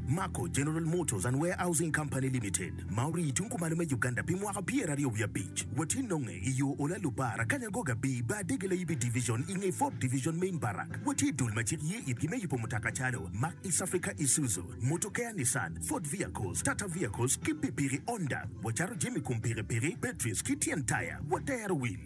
Mako General Motors and Warehousing Company Limited ma orii tung kumalo me Uganda pi mwaka pyeraryo wiye abic watye nonge i yo Ola Lubar akanya Goga Bii Bar Dege Layibi Division i nge Ford Division Main Barrack watye dul ma cik ye itgi me yubo mutoka calo Mack East Africa Isuzu Motor Care Nissan Ford Vehicles Tata Vehicles ki pikipiki Honda wacato jami kum pikipiki batteries ki tyen taya watero wil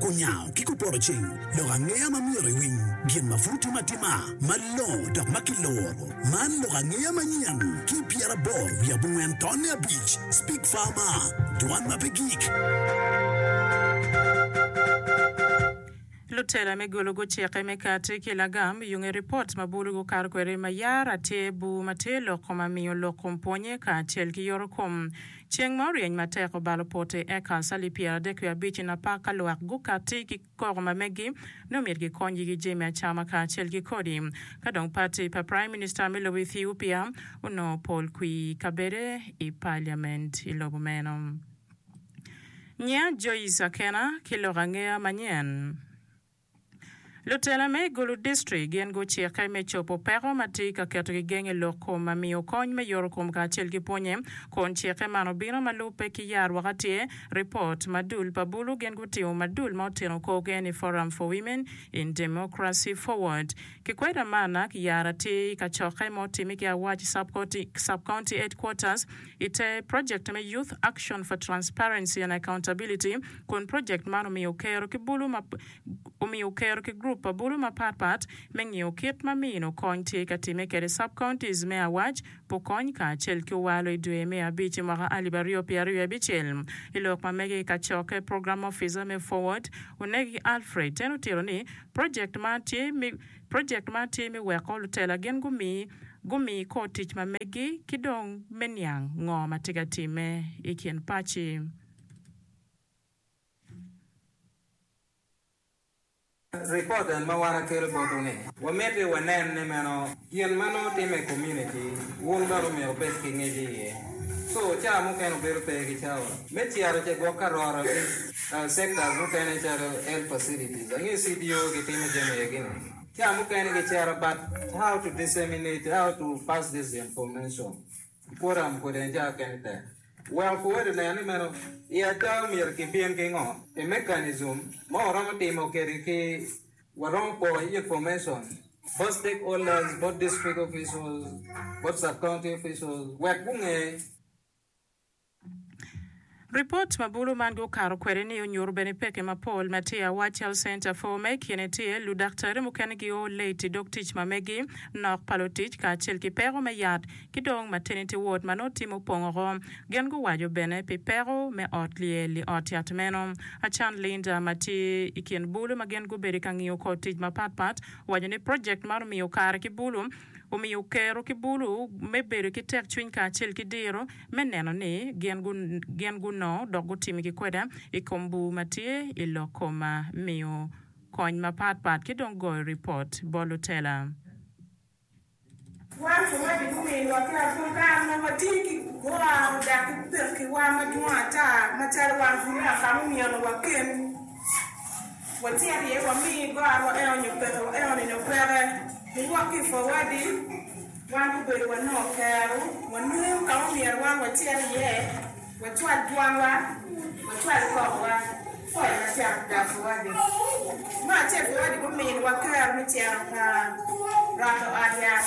Kunyango ki kupoto cing, lok angeya ma myero iwiny, gin ma pud tye matima, malongo dok ma kiloro. Man lok angeya manyen ki i pyeraboro wiye abongwen tonne abic, Speak Farmer, Dwan ma pe gik. Lutela me gulu gucikke me kati ki lagam yung i ripot ma bulu gukato kwede ma yara tye buu ma tye loko ma miyo lok kom pwonye kacel ki yorokom. Ceng ma oryeny matek obalo pote, eka asali pyeradek wiye abic i napak ka lwak gukatti ki koko ma meggi nongo myero gikonygi ki jami acama kacel ki kodi. Ka dong pati pa Praim Minista me lobo Ethiopia onongo pol kwi kabede i paliament i lobo meno. Nyinga Joyce Akena ki lok angeya manyen. Lutela me i Gulu District gin gucikke me cobo peko ma tye ka keto gigeng i lok kom ma miyo kony me yoto kom kacel ki pwonye. Kun cikke man obino ma lubbe ki yar waka tye, Report, ma dul pa Bulu gin gutimo ma dul ma oteno korgi ni Forum for Women in Democracy Forward. Kikweda Marnak Yara tye i kacokke ma otime ki Awac Sub County Headquarters ite Project me Youth Action for Transparency and Accountability, kun projekt man omiyo okero ki bulu ma omiyo okero ki group pa bulu mapat pat me ngiyo kit ma mino kony tye ka timme kede sub-counties me awac pa okony kacel ki owalo i dwe me abic i mwaka alip aryo pye aryo abicel i lok ma mege kacokke program officer me Forward Onegi Alfred ten otito ni projekt man tye me projekt man tye me weko lutela gin gumi gumi kor tic ma megi ki dong me niang ngo ma tye ka timme i kin paci. Ripot en ma wan akelo botwu ni, wamiti wanen ni meno gin ma nongo timme i komuniti, wun bene omyero wubed ki ngec iye. Co ca mukene obedo pe ki cawa me cito ce gwok ka roro ki sectors mukene calo health facilities, angeyo CDO gitimo jami aye gini. Ca mukene gicito but how to disseminate, how to pass this information. Puram kodi en caa kene tek. Weko pur ento nen ni meno i ada omyero ki bin ki ngo i mechanism ma waromo timo kedi ki waromo po i ye formation both stakeholders both district officials both sub county officials wek gunge. Ripot ma bulu man gukato kwede-ni onyuto bene peke mapol ma tye i Awac Health Center for. Ma i kine tye, ludaktari mukene gio late i dog tic ma megi, nok pa lutic kacel ki peko me yat, ki dong maternity ward ma nongo tye mupong oko. Gin guwaco bene pi peko me ot lyel i ot yat meno. Achan Linda ma tye i kin bulu ma gin gubedo ka ngiyo kor tic mapat pat owaco ni project man omiyo kare ki bulu omiyo kero ki bulu me bedo ki tekcwiny kacel ki diro me neno ni gin gunongo dok gutimi ki kweda i kom bur ma tye i lok koma, miyo kony mapat pat ki dong goyo ripot bot lutela. Wan luoti gumiyo lwakki lapwony ka nongo watye ki gwaro dok ki pekkiwa madwong ata macalo wan bulu aka mumyeno waken. Watyer iye wami gar wa eno nyo peke wa eno nino peke niwok ki ipor wadi wan gubedo wanongo kero wanum kama omyero wan watyer iye wacwal twal wa wacwal kok wa pol macok gar pa wadi ma acel pa wadi guminwa kero me cito ka rwato ot yat.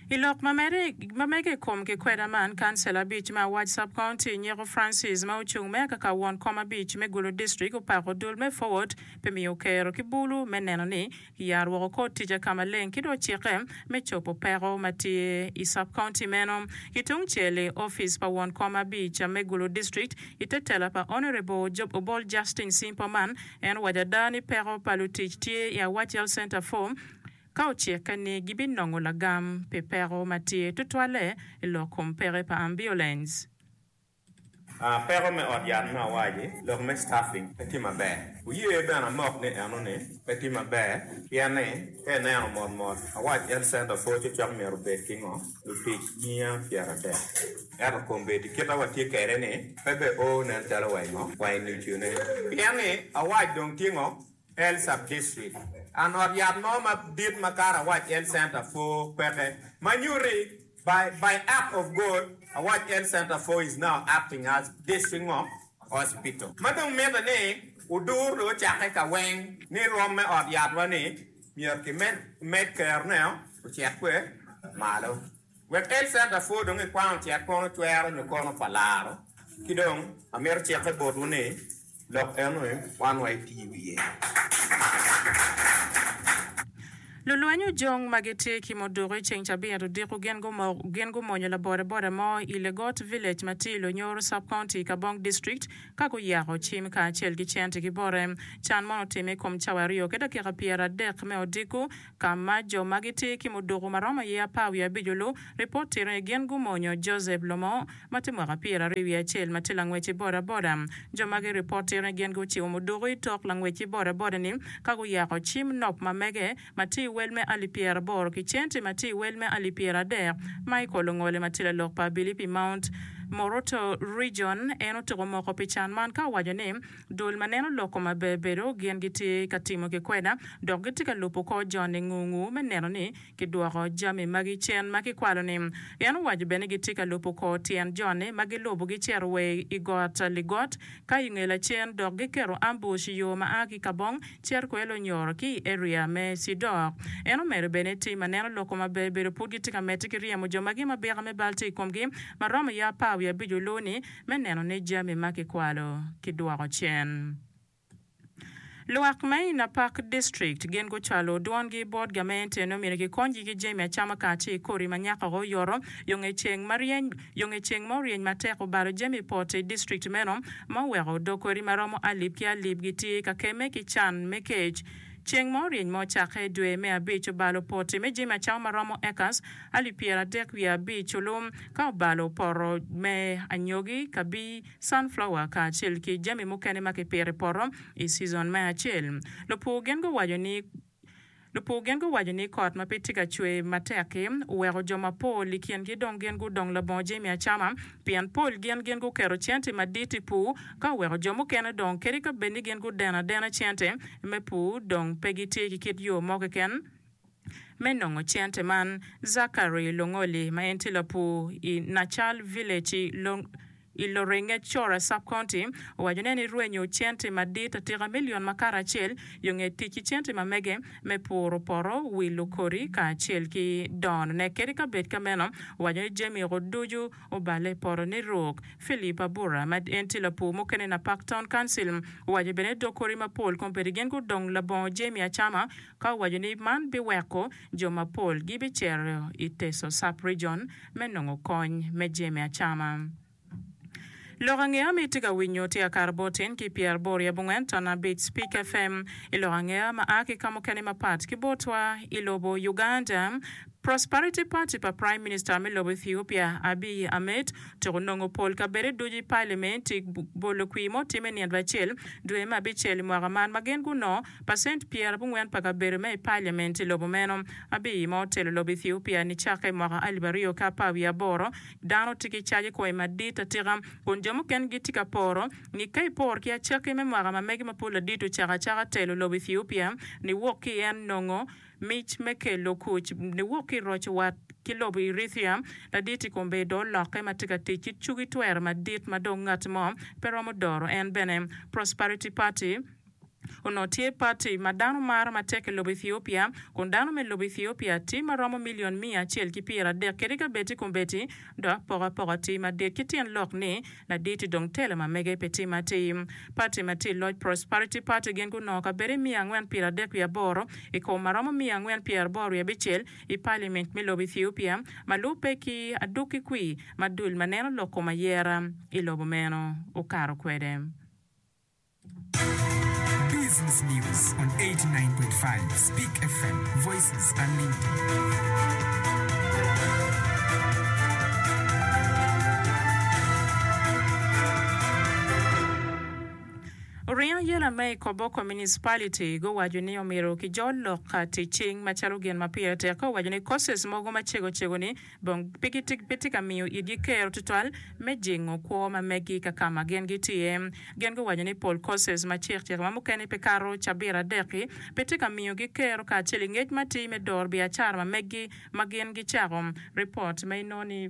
I lok ma mege i kom kikweda man, kancil abic ma awac sub-county nyeko Francis ma ocung mere kaka won kom abic me Gulu District opako dul me Forward pi miyo Okero ki Bulu me neno ni kiyaro woko kor tica ka maleng ki dong cikke me cobo peko ma tye i sub-county meno. Ki tung cel i opic pa won kom abic me Gulu District i te tela pa Honourable Job Obol Justine Simpoman en owaco ada ni peko pa lutic tye i Awach Health Centre for Ka ocikke ni gibinongo lagam pi peko ma tye tutwalle i lok kom peke pa ambiulens. A Peko me ot yat me awaci, lok me staffing, pe tye maber. Wuye bene amok ni enoni pe tye maber pien ni ka ineno mot mot, awac Health Centre pwo cocok myero obed ki ngo? Lutic miya pyeradek. Ento kombeddi kita watye kwede ni pe be o nen calo wa i ngo? Wa i nucune. Pien ni awac dong tye ngo? L Subdistrict, and ot yat mo madit ma kare awac L Center for peke, ma nyuti by by act of God awac L Center for is now acting as District ngo? Hospital. Ma dong mite ni udur dong ocakke ka weng ni rwom me ot yat wa ni myero ki med med kero ne ocit kwe malo wek L Center for dong i kwang ocit kono cwero nyo kono pa laro ki dong amito cikke botwu ni Lok eno aye wan wa iti i wiye. Lulweny ojong ma gitye ki muduku i ceng cabit odiko gin gumonyo labodaboda mo i Legot Village ma tye i Lonyoro Sub-County, Kabong District ka guyako cim kacel ki cente ki bote. Can mono otimme i kom cawa aryo ki dakika pyeradek me odiko ka ma jo ma gitye ki muduku ma romo aye apar wiye abic-lu ripot tito ni gin gumonyo Joseph Lomo, ma tye mwaka pyeraryo wiye acel ma tye langwec i bodaboda. Jo magi ripote ni gin guciwo muduku i tok langwec i bodaboda-ni ka guyako cim nop ma mege ma tye i wel me alip pyeraboro ki centi ma tye i wel me alip pyeradek ma i kolo ngole ma tye lalok pa Abili pi Mount Moroto Region. En otuko moko pi can man ka owaco ni, Dul ma neno lok koma ber bedo gin gitye ka timo kikwena dok gitye ka lubo kor joni ngungu me neno ni Kidwoko jami magi cen ma kikwalo-ni. En owaco bene ni gitye ka lubo kor tyen jone, ma gilubo gicito wa i got Ligot ka i nge lacen dok giketo ambush i yo ma a ki Kabong cito kwede Lonyor ki i area me Cidok. En omedo bene ni tim aneno loko ma ber bedo pud gitye ka medde ki ryemo jo magi ma bika me bal tye i komgi ma romo ya apar wiye abic oloo-ni me neno ni jami ma kikwalo kidwoko cen. Lwak me i Napak District gin gucwalo dwongi bot gamente nongo myero gikonygi ki jami acama kacel ki kodi ma nyaka woko oyoto yo nge ceng ma ryeny yo nge ceng ma oryeny matek obalo jami poto i district meno ma oweko dog kodi ma romo alip ki alip gitye ka kemme ki can me kec ceng ma oryeny ma ocakke i dwe me abic obalo poti me jami acama ma romo acres alip pyera dek wiye abic olum ka obalo poto me anyogi kabi sunflower kacel ki jami mukene ma kipito i poto i cizon me acel. Lupur gen guwaco ni, Lupur gen guwaco ni kot ma pe tye ka cwer matek-ki oweko jo mapol i kingi dong gin gudong labongo jami acama pien pol gin gin guketo cente madit i pur ka oweko jo mukene dong kadi ka bed ni gin gudeno adena cente me pur dong pe gitye ki kit yo mo keken Me nongo cente man, Zachary Longoli ma en tye lapur i Nachal Village i Lorengec Cora Sub-County owaco ne ni rwenyo cente madit atika milion makato acel yo nge tic ki cente ma mege me puro poto, wilo kodi kacel ki dono ne kadi ka bed ka meno owaco ni jami go ducu oballe i poto ni ruk. Philip Abura ma en tye lapur mukene i Napak Town Council owaco bene ni dog kodi mapol kombedi gin gudong labongo jami acama ka owaco ni man biweko jo mapol gibicito i Teso Sub-Region me nongo kony me jemi acama. Lok angeya ma itye ka winyo tye Akara Bot in ki Pierre Bor yab ongwen ton abic Spik FM i lok angeya ma a ki ka mukene mapat ki botwa i lobo Uganda. Prosperity Party pa Prime Minister me lobo Ethiopia Abiy Ahmed tuk onongo pol kabede ducu i Palimenti bolo kwir ma otimme nino acel dwe me abicel i mwaka man ma gin gunongo Pacent pyera abongwen pa kabedo me i Parliament i lobo meno, Abiy, ma otelo lobo Ethiopia nicakke i mwaka alip aryo ki apar wiye aboro, dano tye ki caje koi madit atika, kun jo mukene gitye ka poro ni ka ipor ki acakki me mwaka ma mege ma pud ladit ocako acaka telo lobo Ethiopia ni wok ki en nongo mic me kelo kuc ni wok ki roco wat ki lobo Erythrea ladit i kombedo olokke ma tye ka tic ki cugi twero madit ma dong ngat mo pe romo doro en bene Prosperity Party Onongo tye pati ma dano maro matek i lobo Ethiopia, kun dano me lobo Ethiopia tye ma romo milion miya acel ki pyera dek kede gabeti kombeti, dok poko apoka tye madit ki tyen lok ni laditi dong tela ma mege pe tye matir. Pati ma tye i loc Prosperity Party gin gunongo kabedo miya angwen pyera adek wiye aboro i kom ma romo miya angwen pyera aboro wiye abicel i Paliament me lobo Ethiopia ma lubbe ki aduk ki kwir ma dul ma neno lok kom ayera i lobo meno okato kwede. Oringo ayela ma i Koboko Municipality guwaco ni omyero kijol lok ka ticing macalo gin ma pire tek ka owaco ni courses mogo macego cego ni dong pe gitye ka miyo igi kero tutwal me jingo kwo ma megi ka ka ma gin gitye iye. Gin guwaco ni pol courses ma cikcik ma mukene pe kato cabit adek-ki pe tye ka miyogi kero kacel i ngec matir me doro biacara ma megi ma gin gicako. Ripot ma inongo ni.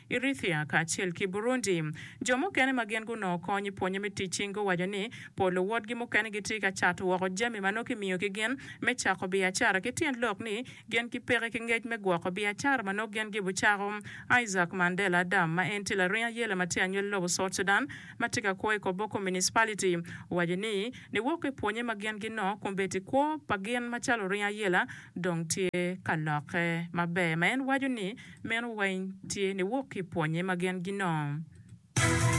Eritrea kacel ki Burundi. Jo mukene ma gin gunongo kony i pwonye me tic cing guwaco ni pol luwotgi mukene gitye ka cato woko jami ma nongo kimiyo ki gin me cako biacara ki tyen lok ni gin ki peke ki ngec me gwoko biacara ma nongo gin gibo cako. Isaac Mandela Adam ma en tye laring ayela ma tye anywel lobo South Sudan ma tye ka kwo i Koboko Municipality owaco ni niwoko i pwonye ma gin ginongo kun bedi kwo pa gin macalo oring ayela dong tye ka lokke maber ma en waco ni Meno weng tye niwok ki i pwonye ma gin ginongo.